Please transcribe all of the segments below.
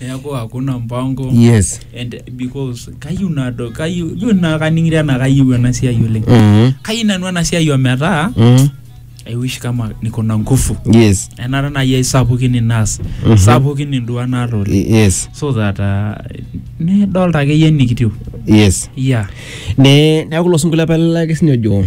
neeku hakuna mpango yes and because kayieu nado kayieu ijo naa kaning'ito enaa kayieu ena siai oleng mm kayieu nanu ena siai ometaa mm I wish kama niko na nguvu yes enara naaji ai sapukin inaas Mhm. sapukin induaa naata oleng yes so that uh, nidolta akeyie enikitiu yes yeah ne neeku ilo sinkolio apa lelaki sinye ojo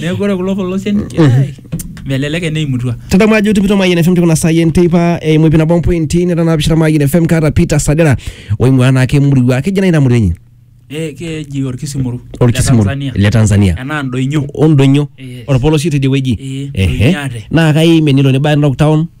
Neeku ore kulo polosien ai, melelek eneimutua. tadamu ajo tipito mayian fm tikuna saai enteipa eimu ipi nabo mpointi neta naapishana mayian fm kaata peter sadera oing'ua naake emurua keji nai ina murua enye Eh, keji orkisimuru. orkisimur Le Tanzania. le tanzania Enaa ndoinyo. ondonyo Yes. orpolosie tidie wueji Eh, Ehe. Ndonyo ate. naa kaimie nilo nibaya narok town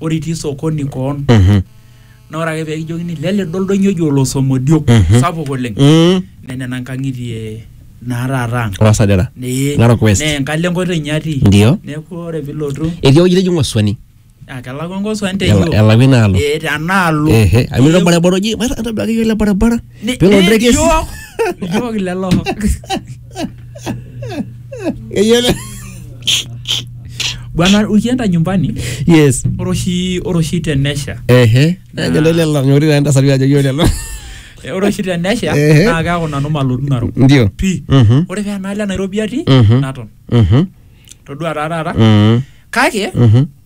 ore itii sokoni koon Mhm. na ore ake pekijokini lele do oldonyo oji olosomodiok Mhm. sapuk oleng Mm. nenena nkang'itie naa taata ang Olasadera. Nee- Narok West. nee enkalo enkoitoi inye atii Ndio. neeku ore pilotu Etii ewueji neji Ng'oswani. ah, kelakwa nkoswan Ela- teyio Elawi inaalo. Eh, tenaalo Ehe. Amu ilo barabara oji, maata- atodua akeyie ele barabara. Ne- Pelo ne- ndege si- iyiook iyiook lelo Eyiolo- bwana ukienda nyumbani yes ore oshi ore oshi tenesha ehe eyiolo lelo ng'ori taa entasati ajo eyiolo lelo eh, ore oshi tenesha Ehe. naa keaku nanu malotu narok ndio pii Mhm. ore pee enaalo e nairobi atii Mhm. naton Mhm. todua taa taata Mhm. kake Mhm.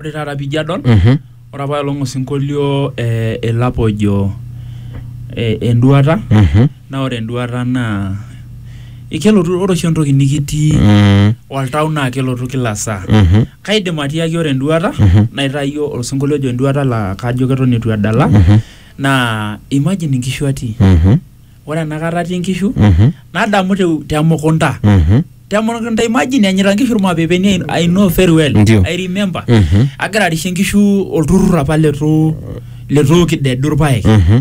Ore taata pijo adol, ore apa olong osinkolio eh, elapa ojo eh, enduata naa ore enduata naa kelotu ore oshi entoki nikitii oltau naa kelotu kila saa kaidim atiaki ore enduata naitayio osinkolio ojo enduata laa kajo keton itu edala naa imagine inkishu atii ore enakata atii nkishu Mhm. nadamu te, te mukunta Mhm. te mukunta imagine enyita nkishu irmapepeni I- I know very well Ndio. I remember Mhm. agira arishie nkishu olturrur apa letu letu kidedu irpaek Mhm.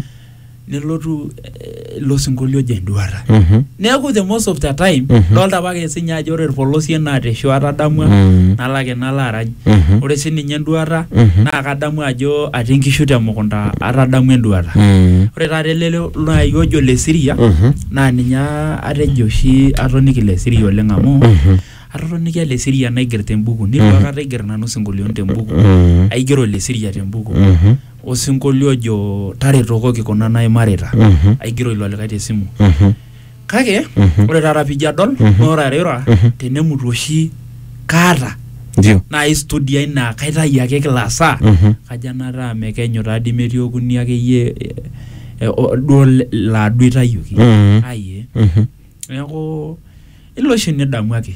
nelotu eh, ilo sinkolio ojo enduata Mhm. neeku the most of the time Mhm. dolta apake sinye ajo ore irpolosien naa teshuata adamua Mm. nalo ake nalo arany Mhm. ore sii ninye enduata Mhm. naa kadamu ajo atii inkishu temukunta atadamu enduata Mm. ore taata ele nai ojo le siria Mhm. naa ninye atejo oshi atoniki le siria oleng amu Mhm. atotonikia le siria naiger tembuku nitu aikata aiger nanu sinkolioni tembuku Mm. aigero le siria tembuku Mhm. osinkolio ojo taretokoki kuna naimarita Mhm. aigero ilo likae tesimu Mhm. kake ore taata pijo adol naa ore airura tenemutu oshi kaata ndio naai studio ai naa kaitayu ake kila saa Mhm. kajo enataa mekenyu taadii metii okuni akeyie eh, eh, o- duo le- laa duo itayioki Mhm. ai eh. Mhm. neeku ilo oshi nidamu ake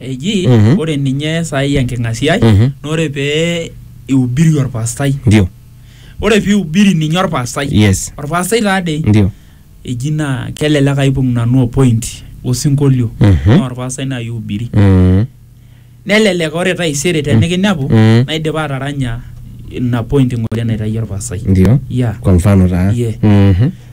eji Mhm. ore ninye saai enking'asiai Mhm. na ore pee ihubiri orpastai ndio ore pihubiri ninye orpastai yes orpastai taadei ndio eji naa kelelek aibung nanu opoint osinkolio Mhm. naa orpastai nai ihubiri Mm. nelelek ore taisere tenikinepu Mm. naidipa ataranya ina point ng'ole naitayio orpastai ndio ya kwa mfano taa Yeah. Mhm.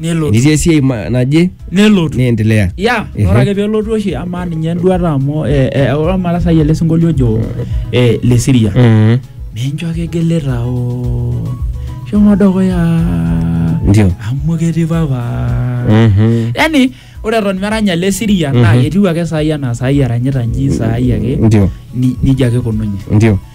nelotu enitii esiai ma- naje nelotu niendelea ya Ehe. ore ake pelotu oshi amaa ninye enduata amu eh, eh, ore amu atasayie ele sinkolio ojo eh, le siria Mhm. mincho ake geleta o shomo dukuya ndio amu ketii papa Mhm. yani ore eton meranya ele siria naa Mhm. ketiu ake saai anaa saai eranyita nji saai ake ndio ni- nijia ake ikununye ndio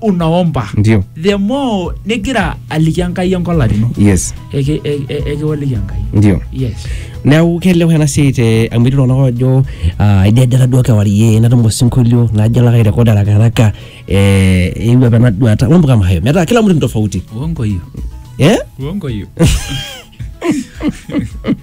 unaomba ndio the more nigira aliki enkai enkola ino yes eki- e- e- ekiwoliki enkai ndio yes neeku kelewa ena siai te amu etii iltung'anak oojo ah, aidedera duo kewarie natum osinkolio najo alo ake airekod haraka haraka eh, eewuo apa ena duata mambo kama hayo metaa kila mtu ni tofauti uongo hiyo eh? uongo hiyo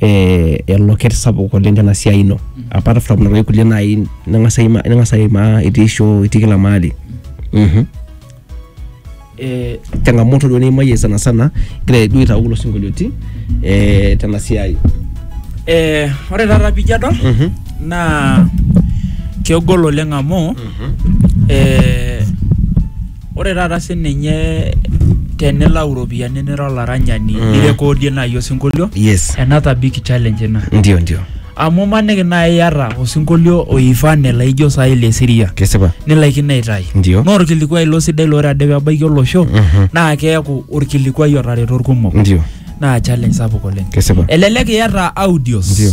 eh, eloket sapuk oleng tena siai ino apart from nena toki kulie naai ning'as aima- ning'as aimaa itii show itii kila mahali Mhm. Eh, changamoto duo niimayie sana sana igira duo aitau kulo sinkolioitin eh, tena siai Eh, ore taata pijo adol Mhm. naa kegol oleng amu eh, Ore taata sininye tenilau iropiyiani nira olaranyani mm. nirekodie naaji osinkolio yes. another big challenge ina ndio ndio amu maniki naaji iyata osinkolio oifane laijo saai le siria kesipa nilaikino aitayu ndio naa orkilikuai ilo sidai lore ade pebaiki olosho mm -hmm. naa keeku orkilikuai otareto irkumok ndio naa challenge sapuk oleng kesipa elelek iyata audios ndio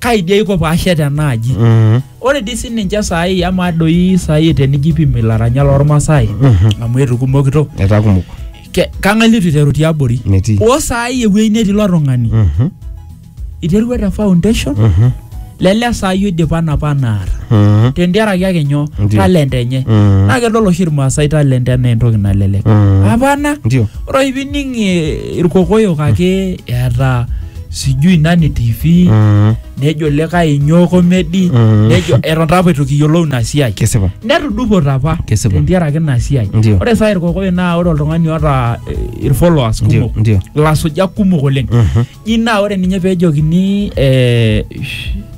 kaidi aiko paashet ena aji Mhm. ore dii sininche saai ama doi saai tenijo ipim ilaranyak lormasae amu etukumokito etaa kumok Ke- kang'ae litu iteru tiabori metii oo saai ewueji netii ilo tung'ani Mhm. iterua te foundation Mhm. lele saai oidipa napa anaata Mhm. tentiaraki ake nyoo Ndio. talent enye Mhm. naa kedol oshi irmaasai talent enaa entoki nalelek Mhm. apana ndio ore oshi pining eh, irkokoyok ake eeta sijui nani tv Mm, nejo likae inyoo komedi Mm. nejo eton taa apa eitu kiyiolou ina siai kesipa netudupote apa Kesipa. tentiaraki ina siai Ndio. ore saa irkokoyo naa ore oltung'ani oota eh, irfollowers ndio kumok ndio ilasujak kumok oleng Mhm. ji naa ore ninye peejokini eh, sh-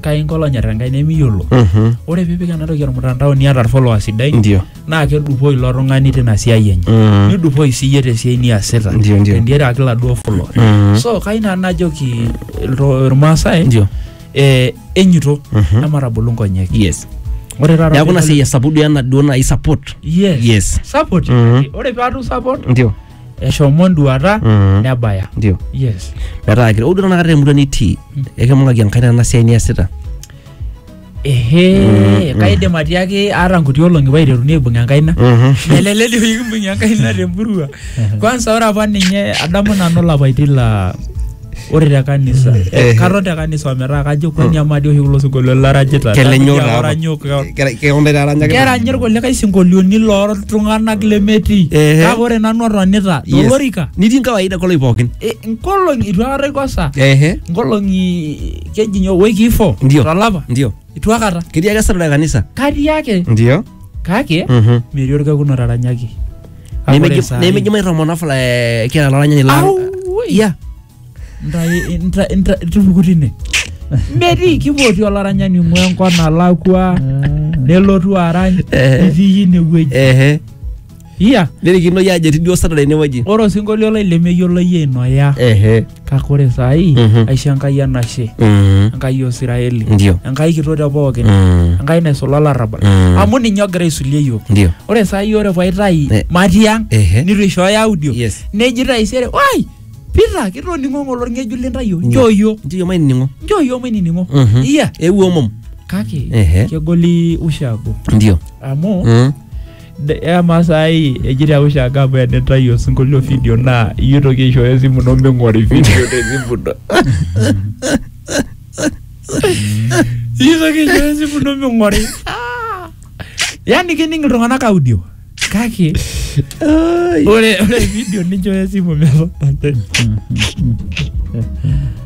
kake inko lonyor enkai nemiyiolo Mhm. ore piipik ena toki ormutandao niata irfolowers sidai ndio naa kedupoi ilo tung'ani tina siai enye Mm. nidupoi siyie tesiai niasita Ndio, ndio. tendiaraki laduo follower Mhm. so kai nanu najoki ilto- irmaasai ndio eh, enyito Mhm. ematabolu nkonyek yes ore taata neaku ina pidol- siai esapudu ena duo nai support yes, yes. support Mhm. ore piatu support ndio eshomo enduata Mhm. nebaya ndio yes metaa kira udo tanakata temurua nitii ekimung'aki enkai tena siai niasita ehe kaidim atiaki aata nkuti olong'i paiteruni aibung enkaina eleleli oyikimbung enkaina temurua kwansa ore apa ninye adamu nanu lapaitin la ore te kanisa eh, Eh. katon te kanisa ometaa kajo kwani amadi oshi kulo sinkolio larajita kelenyo Kajo oranyok keonde taranyaki kerany irkulikae sinkolioni loltung'anak lemetii Ehe. kake ore nanu atonita Yes. tolorika nitii nkawaida koloi pookin Eh, nkolong'i itu aikata aikosa ehe nkolong'i keji nyoo wiki ifo ndio tolapa ndio itu akata Ketii ake esarda kanisa. katii ake Ndio. kake Mhm. metii orkekun otaranyaki Kake ore saa hii- Nemeji mairomona fula eh, kila laranyani lang. Au, woi. Iya. Ntai- nta- nta- tupuku tine metii kipoti olaranyani ing'ua enkop nalakua nelotu arany Eh. itii inewueji Ehe. iya nerikino yie ajo etii duo Saturday inewueji ore osinkolio lai lemeyiolo yie inoya ehe kake ore saai Mhm. aisho enkai enashe Mm. enkai osiraeli Ndio. enkai kitok te pookin Mm. enkai naisula olarrabal Mm. amu ninye ogira aisulie yiok Ndio. ore saai ore paitai Eh. matii ang Ehe. nitu ishooyo audio Yes. neji taisere wai pita kitoning'o ng'ole orng'ejuk lintayio njoo yiok Ndio mainining'o. njoo yiok mainining'o Mhm. iya Eewuo omom. kake Ehe. kegoli ushago Ndio. amu Mm. De- Ema saai ejito awosh ake amu enitayu osinkolio video naa iyie toki aishooyo esimu ino ming'ori video te simu ino. Iyie toki aishooyo esimu ino ming'ori. Ah. Yaani kening iltung'anak audio kake ore ore video ninchooyo esimu metonate.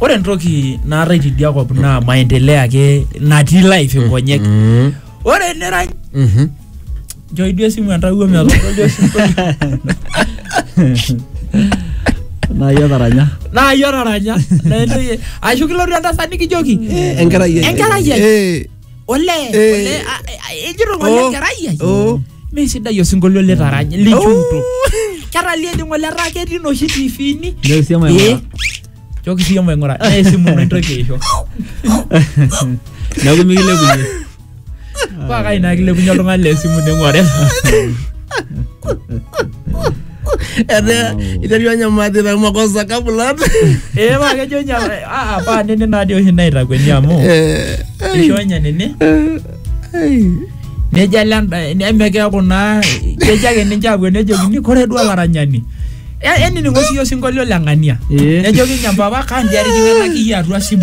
ore entoki naatae tidia kop naa maendeleo ake natii life nkonyek Mm. ore enirany Mhm. njoi duo esimu entawuo metodol duo osinkolio naa iyie otaranya naa iyie otaranya naa entoki ashu kilotu entasat nikijoki enkerai ai. enkerai ai Eh. olee Eh. olee a- a- ejito ng'ole Oh. enkerai ai Oh. mee sidai osinkolio litaranya lichunto ketalie di ng'ole etaa ketii noshi tifini Ndio sema Eh, ya. choki siyie maing'ura naa esimu ino intoki aisho Na kumi kile kumi. paa kai naa kilepunye oltung'ani le simu neng'uare Etaa iterua anyamati na makosa kabulat. ee paa kejo nya aa paa nene naadii oshi naitakueni amu Eh, ai, isho nya nene eh, ai. nejo ele enda- neme keeku naa kejo ake ninche apuo nejokini kore duo olaranyani E- enining'o siyie osinkolio le ng'ania Ee. nejokini mpapa kandiarikina nakiyi atua simu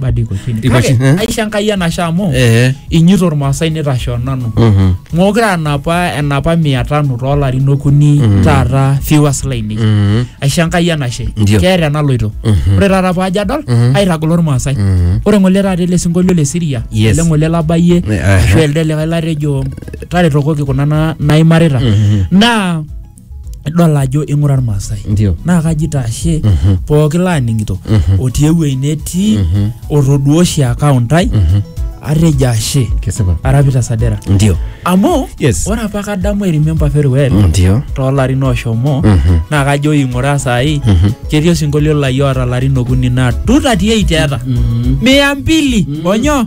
bado iko chini Iko Kake, chini, eh? aisho enkai enashe amu Eh. inyito ormaasai nitashoo nanu Mhm. mookure anapa enapa mia tano toolarin okuni taata viewers lainei Mhm. aisho enkai enashe Ndio. keeta enaloito Mhm. ore taata paajo adol Mhm. aitagolo ormaasai Mhm. ore ng'ole taata ele sinkolio le siria Yes. ele ng'ole labayie Eh, aha. ashu elde likae latejo taretokoki kuna na- naimarita Mhm. naa idol ajo ing'ura irmaasai Ndio. naa kaji itashe pooki laaning'ito otii ewuei netii otoduo oshi account ai atejo ashe Kesipa. arapita sadera Ndio. amu Yes. ore apa kadamu I remember very well Ndio. toolarin oshomo naa kajo ing'ura saai ketii osinkolio lai oota larin okuni naa 238 eeta mia mbili onyo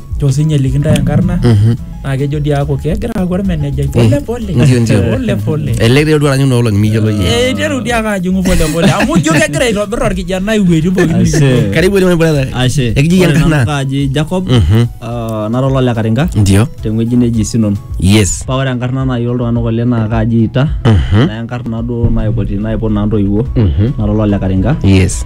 jo sinye likintae enkarna Mhm. naa kejo dii aaku kegira aaku ormenejai pole pole Ndio, ndio. pole pole Ele kiretu aranyu noo olong'i miyiolo yie. Eh, iteru dii ake ajing'u pole pole amu ijo kegira aitobir orkijanai iwuejitin pookin Ashe. Karibu oleng brother. Ashe. Ekiji Ore enkarna. nanu kaaji Jacob Mhm. ah, nara olole Karinga Ndio. tewueji neji Sinon. Yes. Paa ore enkarna naai oltung'anak oleng naa kaaji Ita. Mhm. Naa enkarna duo naipoti naipot naa ntoiwuo. Mhm. Nara olole Karinga. Yes.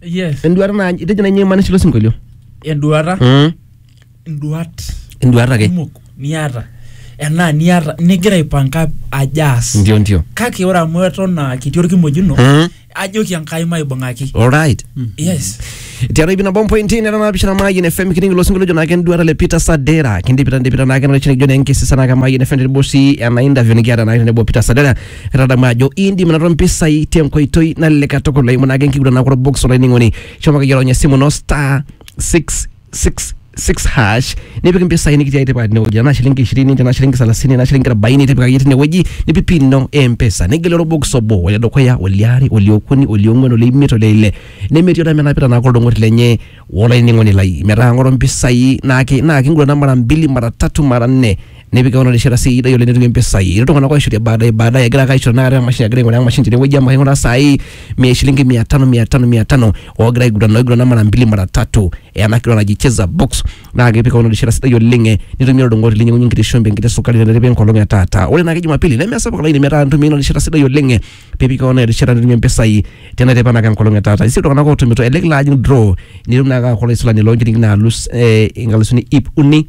yes Enduata naa itejo nai imaanisha ilo sinkolio. enduata Mm. nduat Enduata ake. kumok niata enaa niata nigira aipanka ajo aas Ndio ndio. kake ore amu eton aa kitii orkimojino Mm. ajoki enkai maibung'aki Alright. yes tiatua ipi nabo mpointi nera naapishana maayien fm kining ilo sinkolio ojo naake enduata le peter sadera kindipita ndipita naake nalo chini kijo naa enkisisa naake maayien fm tenebo sii ena interview nikiata naake tenebo peter sadera Etadamu ajo iindim anoto mpisai tenkoitoi nalelek katukul eimu naake enkiguran naaku orbox olainining'oni. Shomo akeyie ronya esimu ino star 666 hash nipik mpisai nikitii aitipika tinewueji tenaa shilingi 20 tenaa shilingi 30 tenaa shilingi 40 nitipika akeyie tinewueji nipik pin ino e M-Pesa nigelu orbox obo ole dukuya oliare oliokuni oliong'uan oleimiet oleile nemetii olemenapita naake oldung'oti lenye olainining'oni lai. Metaa ng'oru mpisai naake naa kingurana mara mbili mara tatu mara nne nepik keon erishata sidai oleng netumie mpisai. Etii iltung'anak oishorie baadaye baadaye egira ake aishoru tenakata emashini egira aing'uraa emashini tenewueji amu aing'uraa saai mia shilingi mia tano mia tano mia tano oogira aigurana oigurana mara mbili mara tatu ena kiguran naji cheza box naa kepik keon erishata sidai oleng eh, nitumie olodung'oti linyang'unye enkiti shumbi enkiti sukari teneripa enkolong e taata. Ore naake jumapili nemesapuk olaini metaa intumia ina rishata sidai oleng eh, piipik keon erishata nitumie mpisai tena teipa naake enkolong e taata. Etii sii iltung'anak ootumito elelek ilo ajing draw nitum naake aaku olaisulani loo nchilingini naalus eh inkalusuni iip uni